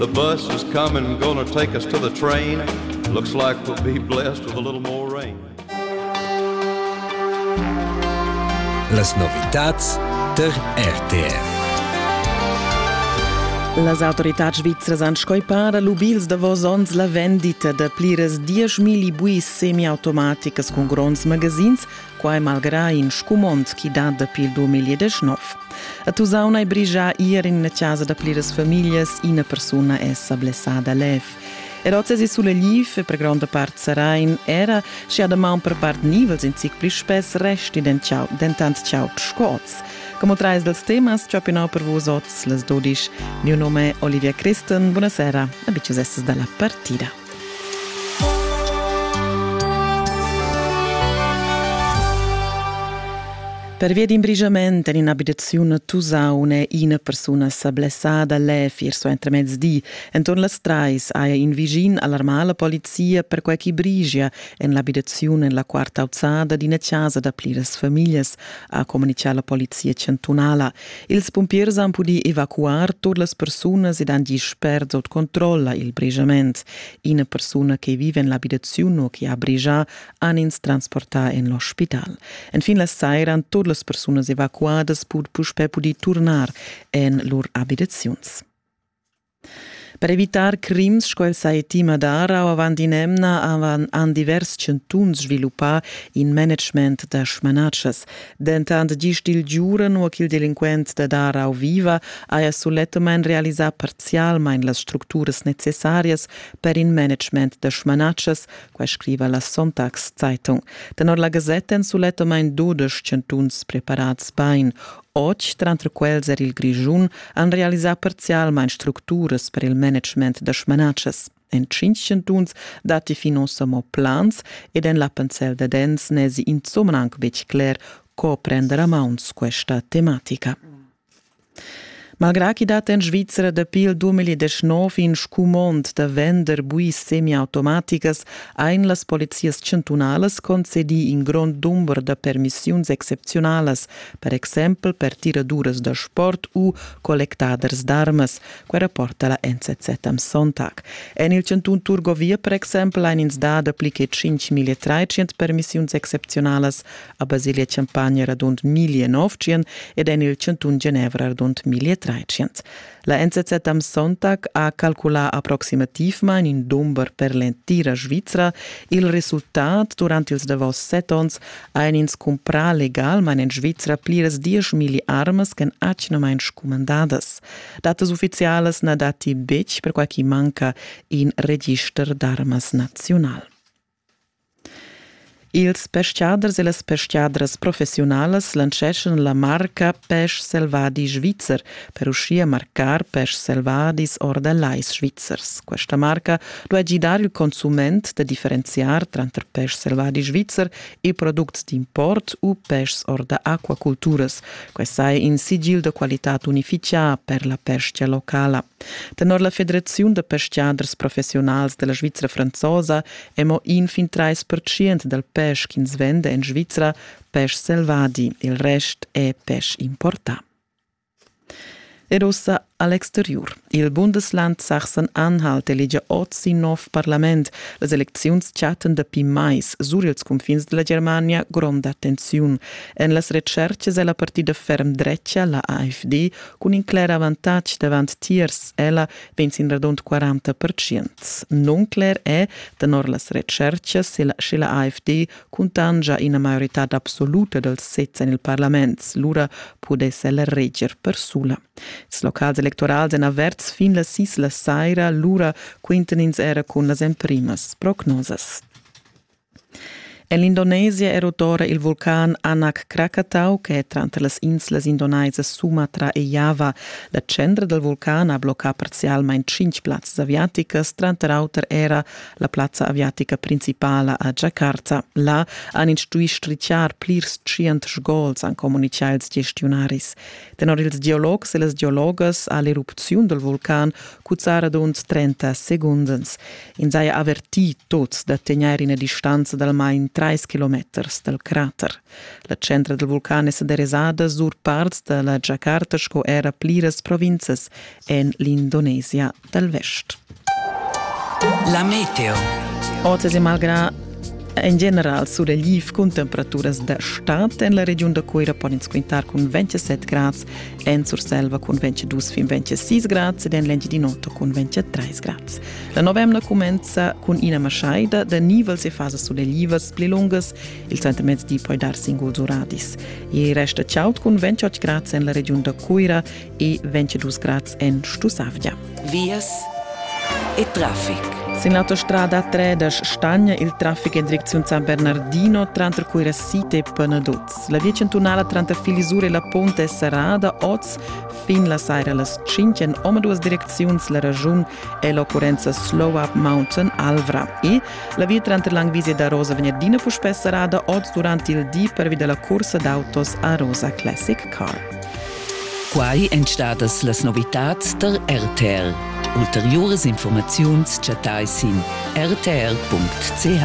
The bus is coming, I'm gonna take us to the train. Looks like we'll be blessed with a little more rain. Las novitats ter RTR. Las autorità svizras han scoipar lubils davos onns la vendita da pliras 10.000 buis semiautomaticas cun gronds magazins quai malgrà in scumond chi dat dapi il 2019. A Tusaun hai brigia ir in la chasa da pliras famiglias ina persuna è sa blessada lev. Er oz è sulla liv e per gronda part Sarain era schi ad maun per part nivels in zic pli spess resti den ciao, dentant ciao sco oz. Como trais dels temas ciopinau per vos oz, les dodisch. Mio nome è Olivia Christen, buonasera, abicius estes dalla partida. Pervia d'in brigiament en in'abitaziun a Tusaun è ina persuna sa blessada lev ier suentermezdi. Enturn las trais haja in vischin alarmà la polizia perquai ch'i brigia en l'abitaziun en la quarta auzada d'ina chasa da pliras famiglias, ha communitgà la polizia chantunala. Ils pumpiers han pudì evacuar tut las persunas ed han gì spert sut controlla il brijament. Ina persuna che vive en l'abitaziun u che ha brigia han ins transportà en l'ospital. Enfin la saira han tut las persunas evacuadas pud puspè pudì turnar en lur abitaziuns. Per evitar crims sco el sa tima dar avant in'emna han divers chantuns sviluppà in management da smanatschas. Dentant gist il giuren u ch'il delinquent da Darau viva haja sulettamain realisà parzialmain las structuras necessarias per in management da smanatschas, quai scriva la Sonntagszeitung. Tenor la gasetta èn sulettamain dudesch chantuns preparads bain. Otg tranter quels er il Grischun han realisà parzialmain structuras per il management da smanatschas. En tschintg chantuns datti fin ossa mo plans ed en l'Appenzell Dadens n'èsi insomma anc betg cler, co prender a mauns questa tematica. Malgrà ch'i dat en Svizra dapi il 2019 in scumond da vender buis semiautomaticas, ein las polizias chantunalas concedì in grond dumber da permissiuns excepziunalas per exempel per tiraduras da sport u collectaders d'armas. Quella porta la NZZ am Sonntag. En il chantun Turgovia per exempel ein ins dà dapli che 5.300 permissiuns excepzionalas a Basilia-Champagna radund 1.900 ed en il chantun Genevra radund 1.300. La NZZ am Sonntag ha calculà approximativmain in dumber per l'entira Svizra. Il resultat durant ils davos set onns hajan ins cumprà legalmain en Svizra pliras dieschmilli armas ch'èn atgnamain scumandadas. Datas uffizialas na datti betg, perquai ch'i manca in register d'armas naziunal. Ils pestgaders e las pestgadras professiunalas lanceschan la marca Pesch selvadi svizzer per uschia marcar peschs selvadis or da lais svizzers. Questa marca duai gidar il consument da differenziar tranter peschs selvadi svizzer e products d'import u peschs or da aquaculturas. Quai saja in sigil da qualitad unifitgà per la pestga locala. Tenor la Federaziun da pestgaders professiunals della Svizra franzosa è mo in fin trais percient dal pesch ch'ins venda en Svizra pesch selvadi, il rest è pesch importà. Ed ussa a l'exteriur. Il Bundesland Sachsen-Anhalt elegia oz in nov parlament. Las elecziuns chattan dapi mais sur ils cunfins della Germania gronda tensiun. En las retschercas è la partida ferm drecha, la AfD, Cun in cler avantatg davant tiers ella vegn sin radund 40 percent. Nuncler è, tenor las retschertgas, sche la AFD cuntanscha ina maioritad absoluta dals sezs en il parlament, lura pudess ella reger persula. Ils locals electorals èn averts fin las sis la saira, lura quintan ins era cun las emprimas prognosas. En l'Indonesia è rotora il vulcan Anak Krakatau che tranter las inslas indonesas Sumatra e Java. La centra dal vulcan ha bloccà parzialmain tschintg plazzas aviaticas, tranter auter era la plazza aviatica principala a Jakarta. Là han ins stuì striziar plirs tschient sgols, han communitgà ils gestiunaris. Tenor ils geologs e las geologas ha l'erupziun dal vulcan cuzzà radund 30 secunds. Ins haja avertì tuts da tegnair ina distanza d'almain trais kilometers dal crater. La centra dal vulcan è sa derasada sur parts da la Giacarta sco era pliras provinzas en l'Indonesia dal vest. La meteo. Oz è malgrà en general sulegl cun temperaturas da stad en la regiun da Cuira pon ins quintar cun 27 grads, en Surselva cun 22 fin 26 grads ed en l'Engiadin'Ota cun 23 grads. La novemna cumenza cun ina maschaida da nivels e fasas suleglivas pli lungas, il sentimezdi poi dar singuls uradis. E resta chaud cun 28 grads en la regiun da Cuira e 22 grads en Stusavgia. Vias e traffic. Sin l'autostrada 3 da Stagna il traffic in direczione San Bernardino tranter Cuira Site e Pernaduz. La via centunala tranter Filisur e la Ponte è serrada oz fin la saira las 5 en oma duas direcziuns la ragiun è l'occurrenza Slow Up Mountain Alvra e la via tranter l'Angvisia da Rosa Vegnerdina fu spess serrada oz durant il di pervi da la cursa d'autos a Rosa Classic Car. Quai èn stadas las novitads tar RTL. Ulteriuras informaziuns chattai sin rtl.ch.